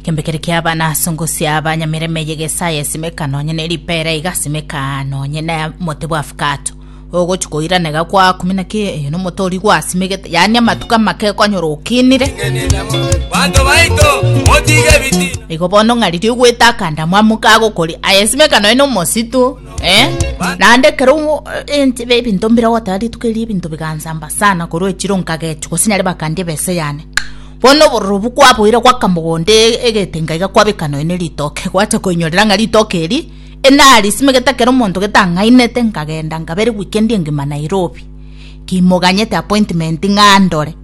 Kembe kere kia abana asongosia abanyamireme yegesaya esimeka nonye ne ripera igasimeka nonye ne mote bwa afakato ogochi koiranega kwa kumi na kiyo eyo nomote ori gwasimegete yaani amatuko amake ekonyora okinire Bantu baito motige biti. igo bono ng'a riria ogwete akandamo amo kagokori ayesimeka nonye nomosito eh? naende kero omo- eh, nche- be- ebinto mbire goteba rituko erio ebinto bigansamba sana korwa echiro nkagechu gose nyare bakandie bese yane Bono obororobu kwaboire gw'akamogondo egetenga iga kwabeka nonya ne ritoke, gwacha koinyorera ng'a ritoke eri enarisimeke gete ekero omonto gete ang'ainete nkagenda nkaberi weekend engima Nairobi kimoganyete appointment ng'a ndore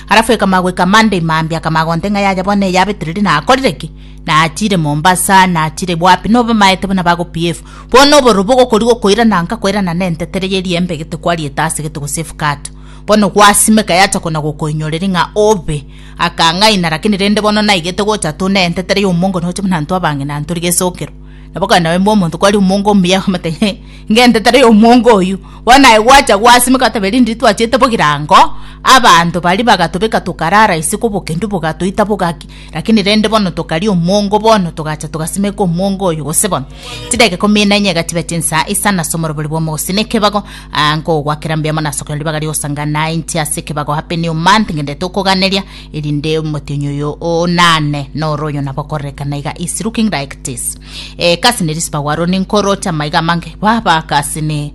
alafu ekamanya goika Monday mambia akamanya gonte ng'a yaya bono eyabetire ri nakorire ki? Nachire Mombasa nachire wapi nigo bamaete buna bago behave. Bono obororobu ogokoria gokoirana nkakoirana nente tere ye riembe gete kwariete ase gete gose efukato. Bono gwasimeka yachakwa na gokoinyoreri ng'a obe. Akang'aina, rakini rende bono naigete gocha atoneente tari omongo noche buna intwe abang'ina ntori gesokero. Nabo kare nabe mbwa omonto kwari omongo omuya akamate ng'a ing'ente tari omongo oyio. Bono aye gwacha gwasimeka otabe rinde titwachete bogirango, abanto baria bagatobeka tokarara isiko obokendu bogatoita bogaki. Lakini rende bono tokaria omwongo bono, togacha togasimeka omwongo oyo, gose bono chidakika ikomi na enye egatiba chinsa isano ase omorobori bw'omogusii nekebago, aa, nkogoakera mbuya mono ase okonyora ribaga ri'ogosanga, na inche ase ekebago happy new month ngenderete okoganeria, erinde omotienyi oyo onane noro oyo nabo okorerekana iga is looking like this. Ee, kasi ne risipa gwaro ninkoroche amaiga amange, baba, kasi ne.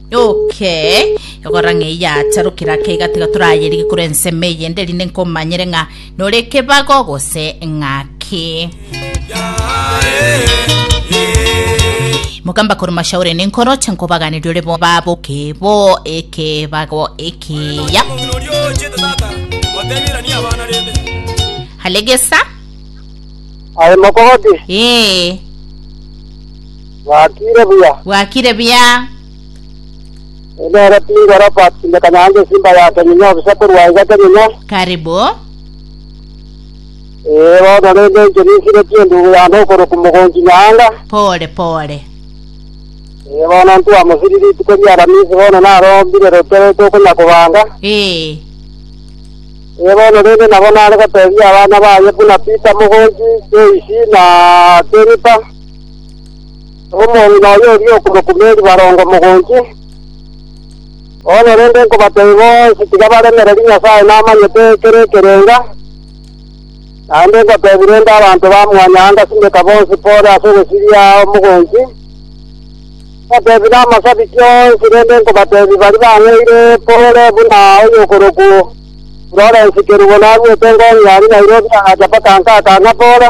Okay. Egora ng'ei yatarukira ake igatiga torayerige kore ensemo eye ende rinde nkomanyere ng'a nore ekebago gose ng'aki. Mokamba kore mashauri ninkoro chenkobaganiri ore bo babo kebo ekebago ekiya. Halegesa. Aye mokogoti. Eh. Bwakire buya. Bwakire buya. Nere Pingo Robert ime Kanyange esimba ya Kenyinyo obisa korwa iga Kenyinyo. Karibu. Ee bono rende inche ninsiretie endugu yane okorokwa Mogonchi Nyaanga. Pole pole. Ee bono ntwamosiri rituko ria Aramisi bono narombire rotoro tokonya kobanga. Ee. Ee bono rende nabo nare gotebia abana baye buna Peter Mogonchi, Joyce na Jennifer. Omong'ina oye oria okomokumeri barongo mogonchi. Bono rende nkobatebia bonsi tiga baremereri Nyasae namanyete ekero ekerenga, naende ngotebi rende abanto ba mwanyaga anga simeka bonsi pore ase ogosiria omogonchi, ngotebi namasabiki onsi rende nkobatebi baria bang'eire pore buna oyokorokwo Florence Kerubo narwete ngong'ia aria Nairobi agacha mpaka nkaka ng'a pore.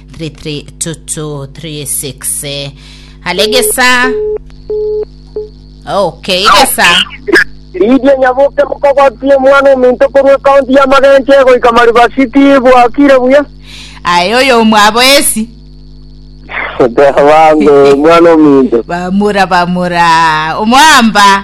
33236 hale gesa okay gesa Lydia Nyaboke mokogoti omwana ominto korwa ekaunti ya Magenche goika Mariba City bwakire buya. aye oyo omwabo esi Bango omwana ominto. bamura bamura omwamba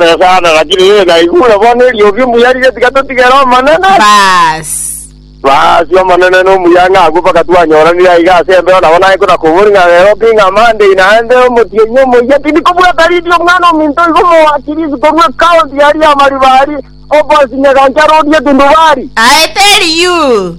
Nyasae agachire inwe naigure bono eriogi omuya riria tiga totigere Omonene. Baas. Baas, Omonene nomuya ng'a agwo mpaka twanyoranire aiga ase embeo nabo naye konakobori ng'a Nairobi ng'a Monday naende omotienyi omoyia tindi kobwata Lydia omwana ominto iga omoakirisi korwa ecounty yaria ya Maribari, Opposite Nyagancha Road Getundu Valley. Aete Eliud.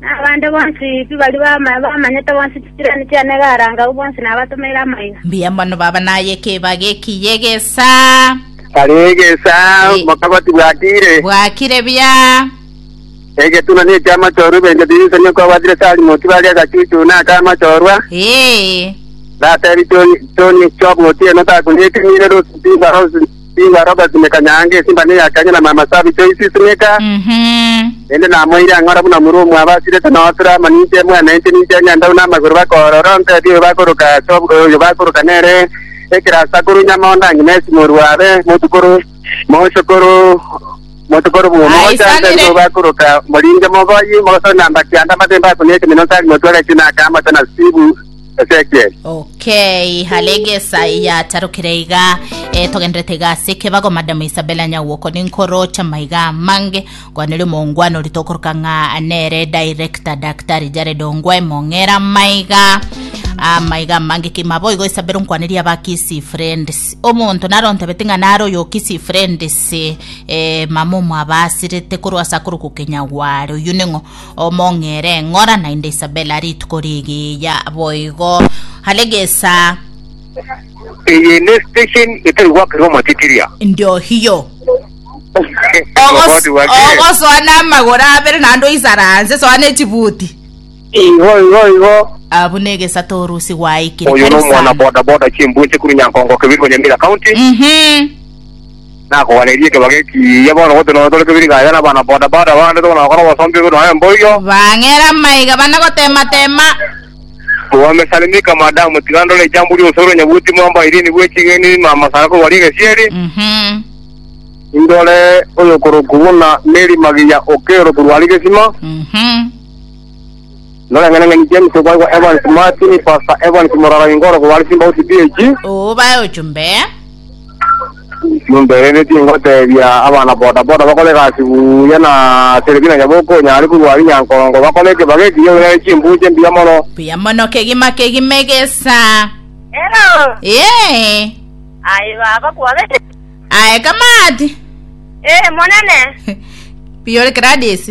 Na abande bonsi pi baria bamanyete bonsi chisirani chiane iga arangau bonsi nabatomeire amaiga. Mbuya mono baba naye ekeba geki y'egesa. Kare egesa mokabati bwakire. Bwakire bia. Egetuna ne ekia amachorwa ebento bibisa nigo kwabwatire Salimo tibari agachuchu na aka amachorwa. Ee. Natebi choni choni chobwotieno takunyetimire rusu timbaro Ningwe aro ogasimeka nyaanga esimba na eya kanya na mama Sabi Joyce isimeka, Mhm. naende namoeire ang'e ora buna omorua omwabo asirete nootera amo ninche mwana inche ninche eng'endau namagoro bakoorora ontebie oyo bakoroka ase ob- oyo bakoroka nere ekero ase akorwa Nyamondo ang'e nesi morua abe motukoro mochokoro motukoro bwo Aisanire. mogochantebie oyo bakoroka moringe mogoyi mogosore namba kianda amate mbakuni ekemino tari motwe agachina akaamate na Steve Ezekiel. Okay, halegesa yatarukire iga e, togenderete iga ase ekebago madam Isabella Nyagwoko ninkorocha maiga mange kwaneri omongwana ori tokoroka ng'a nere director daktari Jared Ongwae mong'era maiga amaiga mange kima boigo isabero nkwaneria aba kisi friends omonto naro ntebete ng'a naro oyo kisi friends e, mama omwabasirete korwa ase akoroku kenyagware oyu ning'o Omong'ere ng'ora naende Isabela rituko rigiya boigo aregesa. Eye ne station etari gwakerwa omotitiria. Ndio hiyo. Ogos- ogosoa namagoro abere naende oisaranse soa nechibuti Igo igo igo. abu negesato orusi gwaikire Oyo karibu nomwana sana boda boda chimbunche kuri Nyankongo Kibiriko Nyamira County. Mhm. Nakogweneria ekebago ekiya bono gose nonya tore kebiri gaiga na abana boda boda bande tokona gokora obosombi obo nonya mboigo. Bang'era maiga bana gotema tema. Wamesalimika madam tiga ndore ijambo rionsi ore onyabuti mwamba irene bwe ching'eni mama sara kobaria egesieri. Mhm. Indore oyokorokwa buna Mary Magiya okero korwa Arigesima. Mhm. Noreng'aneng'ani James oboegwa Evans Martin, Pastor Evans Morara Ingoro bware Simbauti PAG. Obae ochumbe. Jumbe rende tingotebia abana boda boda bakore egasi buya na Selebina Nyabuku onyare korwa ari Nyankongo bakore ekebaga ekiya ore nare chimbuche mbuya mono. Buya mono kegima kegima egesa. Hello. Ee. Aye baba kwabete. Aye kamati. Eh monene. Piyore Gladys.